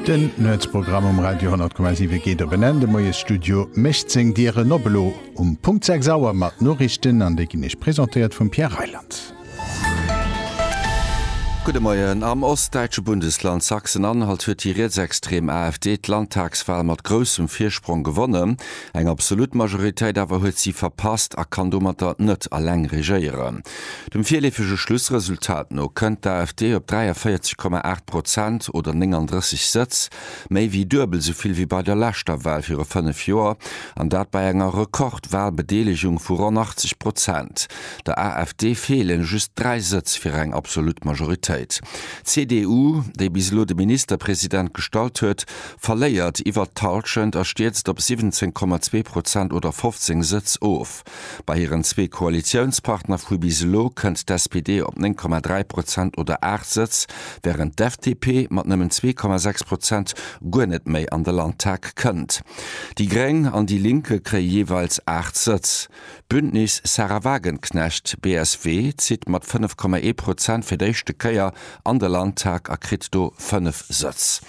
Den Nuetsprogramm um Radio 10,7 geet op en Enn. De Moiesstudio mécht seng Dieren op, elo um Punkt 6 Auer mat Noriichten, an déi ginn Iech presentéiert vum Pierre Reyland. Gudde Moien. Am ostdäitsche Bundesland Sachsen-Anhalt huet déi rietsextrem AfD d'Landtagswal mat groussem Virsprong gewonnen. Eng absolut Majoritéit awer huet si verpasst a kann domatter net eleng regéieren. Dem virleefege Schlussresultat no kënnt d'AfD op 43,8 Prozent oder 39 Sëtz, méi wéi duebel esou vill wéi bei der leschter Wal viru 5 Joer, an dat bei enger Rekordwalbedeelegung vu ronn 80 Prozent. Der AfD feelen just 3 Sëtz fir eng absolut Majoritéit. D'CDU, déi bis elo de Ministerpresident gestallt huet, verléiert iwwert d'Hallschent a stierzt op 17,2 Prozent oder 15 Sëtz of. Bei hiren zwee Koalitiounspartner vu bis elo kënnt d'SPD op 9,3 Prozent oder 8 Sëtz, wärend d'FDP mat nëmmen 2,6 Prozent guer net méi an de Landtag kënnt. Déi Gréng an déi Linke kréie jeeweils 8 Sëtz. D'Bündnis Sarah Wagenknecht, BSW, zitt mat 5,1 Prozent fir d'éischte Kéier an de Landtag a kritt do 5 Sëtz.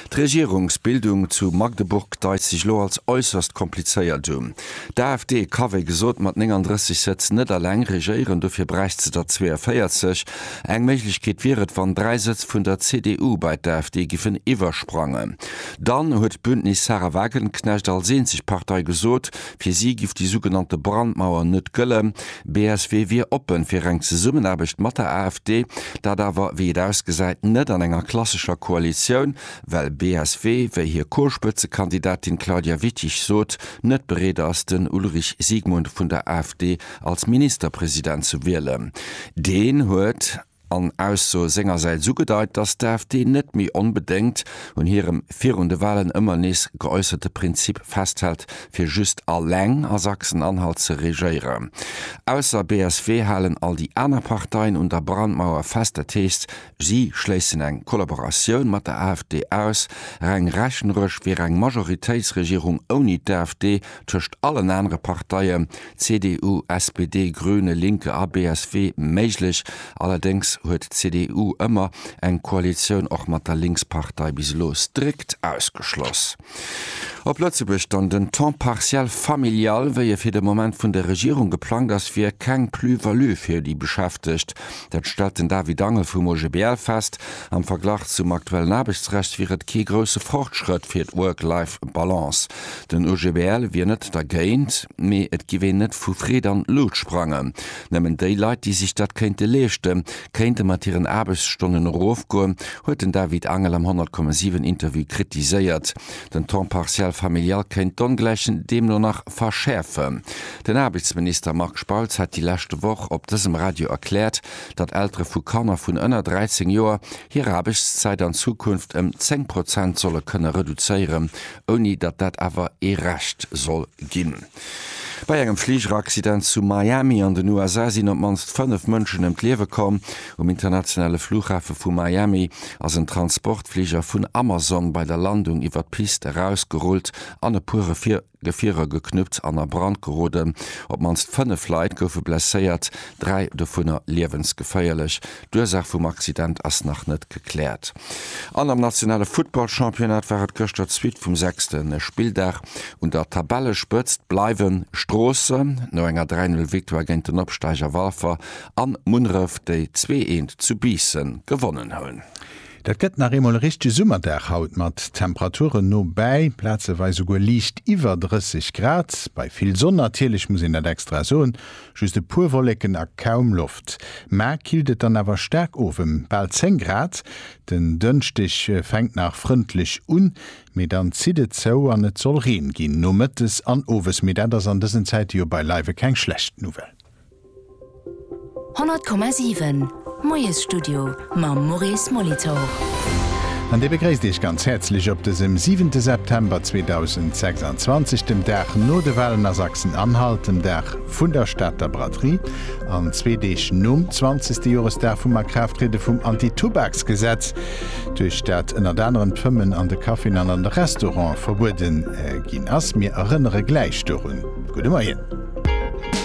D'Regierungsbildung zu Magdeburg deist sech elo als äusserst komplizéiert un. D'AfD ka wéi gesot mat 39 Sëtz net alleng regéieren, dofir bräicht se der 42. Eng Méiglechkeet wier et, wann 3 Sëtz vun der CDU bei d'AfD giffen iwwersprangen. Dann huet d'Bündnis Sahra Wagenknecht als eenzeg Partei gesot, Fir si giff déi sougenannte Brandmauer net gëllen. BSW wier oppe fir eng Zesummenaarbecht mat der AfD, dat awer, wéi et ausgesäit, net an enger klassescher Koalitioun, well BSW, wéi hir Co-Spëtzekandidatin Claudia Wittich sot, net bereet ass, den Ulrich Siegmund vun der AfD als Ministerpresident ze wielen. Deen huet. an Ausso sengersäits ugedeit, datt d'AfD net méi onbedéngt un hirem virun de Wahlen ëmmer nees geäusserte Prinzip festhält, fir just eleng a Sachsen-Anhalt ze regéieren. Ausser BSW halen all déi aner Parteien un der Brandmauer fest, dat heescht, si schléissen eng Kollaboratioun mat der AfD aus. Reng rechneresch wier eng Majoritéitsregierung ouni d'AfD tëscht allen anere Parteien, CDU, SPD, Grüne, Linke a BSW méiglech. Allerdéngs huet d'CDU ëmmer eng Koalitioun och mat der Linkspartei bis elo strikt ausgeschloss. Op Lëtzebuerg dann, Den Temps partiel familial, wéi e fir de Moment vun der Regierung geplangt ass, wier keng Plus-value fir déi Beschäftegt. Dat stellt den David Angel vum OGBL fest. Am Verglach zum aktuellen Aarbechtsrecht wier et kee grousse Fortschrëtt fir d'Work-Life-Balance. Den OGBL wier net dergéint, mee et giff een net vu Freed an Luut sprangen. Nëmmen déi Leit, déi sech dat kéinte leeschten, kéinte mat hiren Aarbechtsstonnen erofgoen, huet den David Angel am 100,7 Interview kritiséiert. Den Temps partiel familial kéint d'Ongläichen deemno nach verschäerfen. Den Aarbechtsminister Marc Spautz hat déi leschte Woch op dësem Radio erkläert, datt Eltere vu Kanner vun ënner 13 Joer hir Aarbechtszäit an Zukunft ëm 10 Prozent solle kënne reduzéieren, ouni datt dat awer ee Recht soll ginn. Bei engem Fligeraccident zu Miami an den USA sinn op d'mannst 5 Mënschen ëm d'Liewe komm. Um internationale Flughafe vu Miami ass en Transportfliger vun Amazon bei der Landung iwwer d'Pist erausgerullt an e puer Gefierer geknuppt an a Brand geroden. Op d'mannst 5 Leit goufe blesséiert, dräi dovunner liewensgeféierlech. D'Ursaach vum Accident ass nach net gekläert. An am nationale Futtballchampionnat war et gëschter d'Suite vum sechste Spilldag. Un der Tabellespëtzt bleiwe Stroosse no enger 3, 0 Victoire géint den Opsteiger Walfer an Munneref, déi 2, 1 zu Biissen gewonnen hunn. Dat gëtt nach eemol e richtege Summerdag haut mat Temperaturen no bäi plazeweis souguer liicht iwwer 30 Grad. Bei vill Sonn natierlech, muss een dat extra soen, just e puer Wolleken a kaum Loft. Mä killt et dann awer staark of, ëm bal 10 Grad. Den Dënschdeg fänkt nach frëndlech un, mee dann zitt et zou an et soll Reen ginn nomëttes an owes. Mee dat ass an dësen Zäite jo beileiwe keng schlecht Nouvelle. 100,7 Moiesstudio mam Maurice Molitor. An dee begréisst Iech ganz häerzlech op dësem siwente September 2026, dem Dag no de Walen a Sachsen-Anhalt, dem Dag vun der Stater Braderie an zwee Deeg nom 20. Joresdag vum Akraafttriede vum Anti-Tubaks-Gesetz, duerch dat ënnert anerem d'Fëmmen an de Caféen an an de Restaurante verbuede ginn ass. Mir erënnere gläich dorun. Gudde Moien.